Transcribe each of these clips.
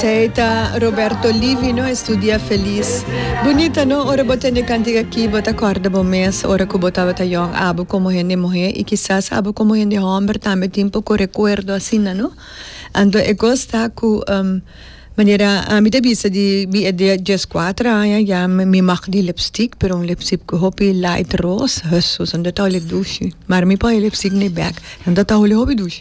Ei ta Roberto Livi no es tu dia felis. Bunita no ora bo tende cantica ki bo ta corda bo mes ora cu bo tabata yong abo como hende muhe y kisas abo como hende homber tambe tin poco recuerdo asina no. Anto e cos ta cu manera ami ta bisa di mi e di dies cuater aña ya mi mag di lipstick pero un lipstick cu hopi light roos hesus anto ta holi dushi. Mara mi pon e lipstick na e bek anto ta holi hopi dushi.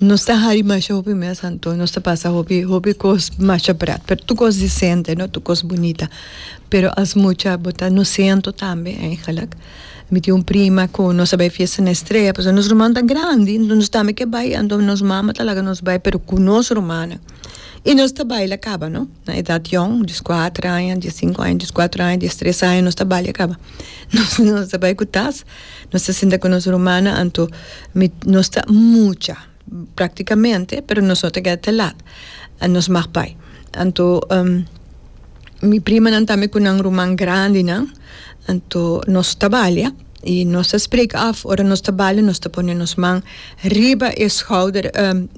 Nos ta hari masha hopi mes anto nos ta pasa hopi hopi cos masha brat pero tur cos decente no tur cos bunita pero as mucha bo ta nos ciento tambe eigenlijk mi tin un prima cu nos a bay fiesta na estrella pasobra nos ruman ta grandi enton nos tambe ke bay anto nos mama ta laga nos bay pero cu nos rumannan y nos ta baila caba no na edad yong dies cuatro aña dies cinco aña dies cuatro aña dies tres aña nos ta balia caba nos ta bay cu tas. Nos ta sinta ku nos rumannan, anto mi, nos ta mucha, praktikamente, pero nos no ta keda te lat. Nos mag bai. Anto mi primanan tambe ku nan ruman grandinan, anto nos ta balia i nos ta spreka af, ora nos ta balia nos ta pone nos man riba e skouder,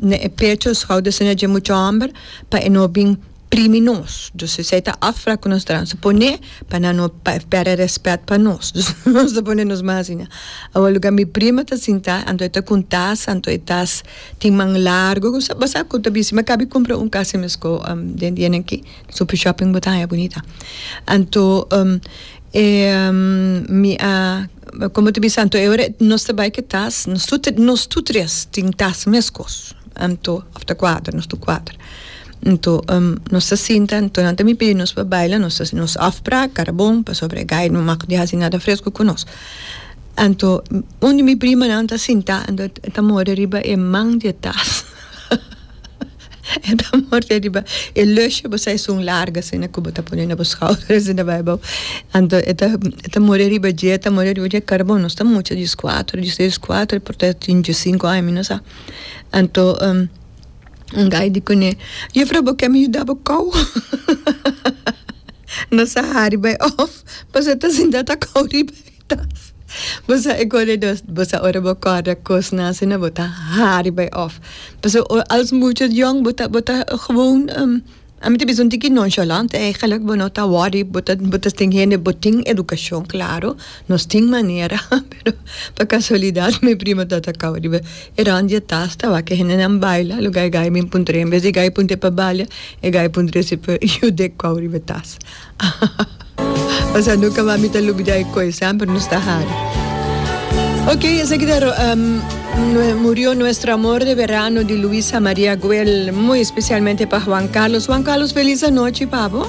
na e pecho, skouder, asina dje mucha hòmber, pa e no bin primi nos dus esei ta afra ku nos drama su pone pa nan no perde respet pa nos dus nos ta pone nos mas asina awa luga mi prima ta sinta anto e ta kun tas anto e tas tin man largu ku sa basa ku ta bisi mi akabi kumpra un kas mes ku den dia nan ki super shopping bo ta haña bunita anto mi a komo ta bisa anto e ora nos ta bai ku e tas nos tur tres tin tas mes kos anto of ta kuater nos tur kuater. Anto nos ta sinta anto nan ta mi pidi nos pa baila nos ta nos afpra cara bon pasobra e guy no mag di hasi nada fresco cu nos anto un di mi primanan ta sinta anto e ta morder riba e man di e tas e ta morder riba e lusje bo sa esun larga asina cu bo ta pone na bo schouder asina bai bo anto e ta e ta morder riba dje e ta morder riba dje cara bon nos ta mucha dies cuatro dies tres dies cuatro por ta tin dies cinco aña mi no sa anto. N'gai di kuné, Jufra, bo ke mi yuda bo kou? No sa hari bai òf pasobra ta sinta ta kou riba e tas. Bo sa e koredos, bo sa ora bo kòrda kosnan asina bo ta hari bai òf. Pasobra als mucho yòn bo ta, bo ta gewoon. A mi ta bisa un tiki nonchalant ey gelijk bo no ta worry bo ta bo ta tin hende bo tin educacion claro nos tin manera pero pa casualidad mi primo ta ta cabo riba e round di e tas ta wak e hendenan baila lo gai gai a bin puntra en bes di gai puntra e pa balia e gai puntra e siper yu dek cabo riba e tas. Pasa nunca mas mi ta lubida e koe, semper nos ta hari. Ok, esaki ta um, murió nuestro amor de verano di Luisa Maria Guel, muy especialmente pa Juan Carlos. Juan Carlos, feliz anoche, pabo.